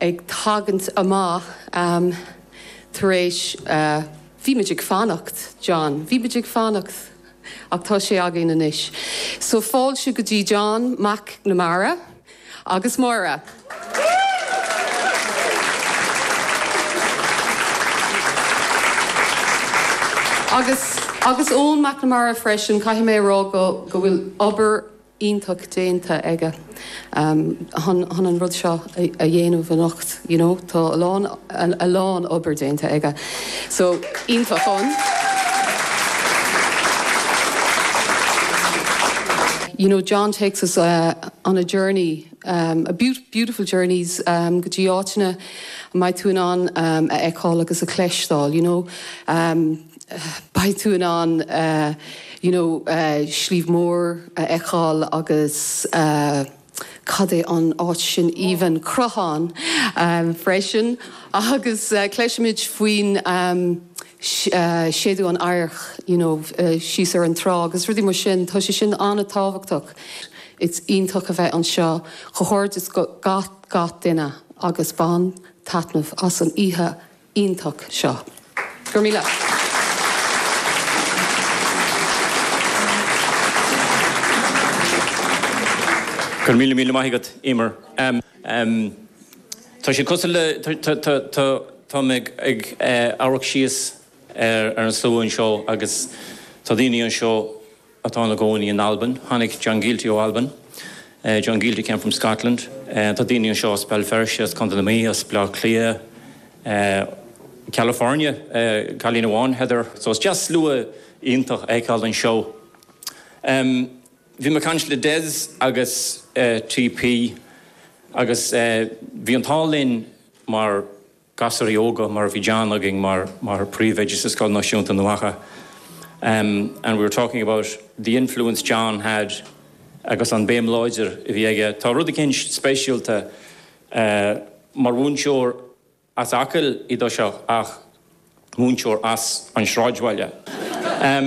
ag tagaint amach tar éis Bhí muid ag fanacht, John, bhí muid ag fanacht ach tá sé againn anois. So fáilte go dtí John McNamara agus Máire. Agus agus Eoin McNamara freisin, caithfidh mé a rá go go bhfuil obair iontach déanta aige chun an rud seo a dhéanamh anocht you know tá a lán a lán obair déanta aige so iontach an you know John takes us uh, on a journey um, a be beautiful journeys um, go dtí áiteanna a mbeidh tú in ann um, a fheiceáil agus a chleisteáil you know um, beidh tú in ann you know Sliabh Mór a fheiceáil agus cad é an áit sin aoibhinn, Cruachán freisin agus cloisimid faoin séideadh an adharc you know síos ar an trá agus rudaí mar sin. Tá sé sin an-tábhachtach. Is iontach a bheith anseo. Comhghairdeas go gach duine agus bain taitneamh as an oíche. iontach seo. Go raibh míle. Go raibh míle míle maith agat Emer. Tá sé cosúil le táim ag amharc síos ar an slua anseo agus tá daoine anseo, atá ina gcónaí in Albain. Tháinig John Gielty ó Albain. John Gielty came from Scotland. Tá daoine anseo as Béal Feirste, as Contae na Mí, as Baile Átha Cliath, California, cailín amháin, Heather. So is deas slua iontach a fheiceáil anseo. Bhí mé ag caint le Des agus TP agus bhí an t-ádh linn mar, gasúraí óga mar bhí John againn mar mar príomhoide sa Scoil Náisiúnta i nDumha Acha and we were talking about the influence John had agus an béim láidir a bhí aige. Tá rud eicínt speisialta mar mhúinteoir as Acaill í do seo ach. múinteoir as an sráidbhaile. Bhí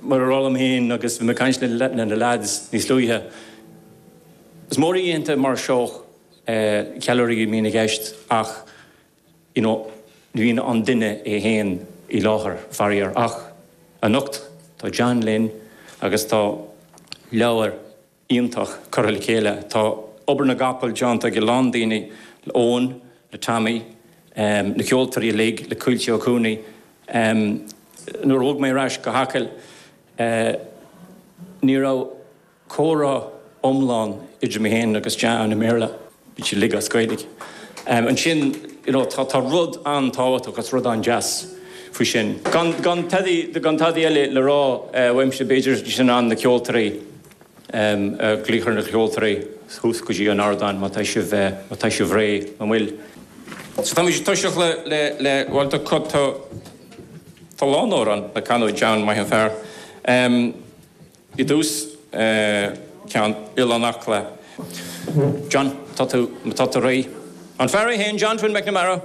mé ag rá liom féin agus bhí mé ag caint le na leaids níos luaithe, is mór oícheanta mar seo, ceiliúradh a bhíonn i gceist ach ní bhíonn an duine é féin i láthair faraor. Ach anocht tá John linn agus tá leabhar. iontach curtha le chéile. Tá obair na gcapall deánta ag a lán daoine, le Eoin, le Tommy, na ceoltoirí uilig, le Caoilte Ó Cuanaigh. Nuair a bhog mé ar ais go hAcaill ní raibh comhrá iomlán idir mé féin agus John i mBéarla, bhí sé uilig as Gaeilge. Ansin you know tá rud an-tábhachtach agus rud an-deas faoi sin. Gan tadaí gan tadaí eile le rá uaimse b'fhéidir bhí sé in ann na ceoltoirí, a ghlaoch ar na ceoltóirí thuas go dtí an ardán má tá sibh má tá sibh réidh an bhfuil so tá muid ag toiseacht le le le bhuel tá cuid tá tá lán amhrán le canadh ag John maith an fear i dtús ceann Oileán Acla John tá tú tá tú réidh an fear é fhéin John Twin McNamara.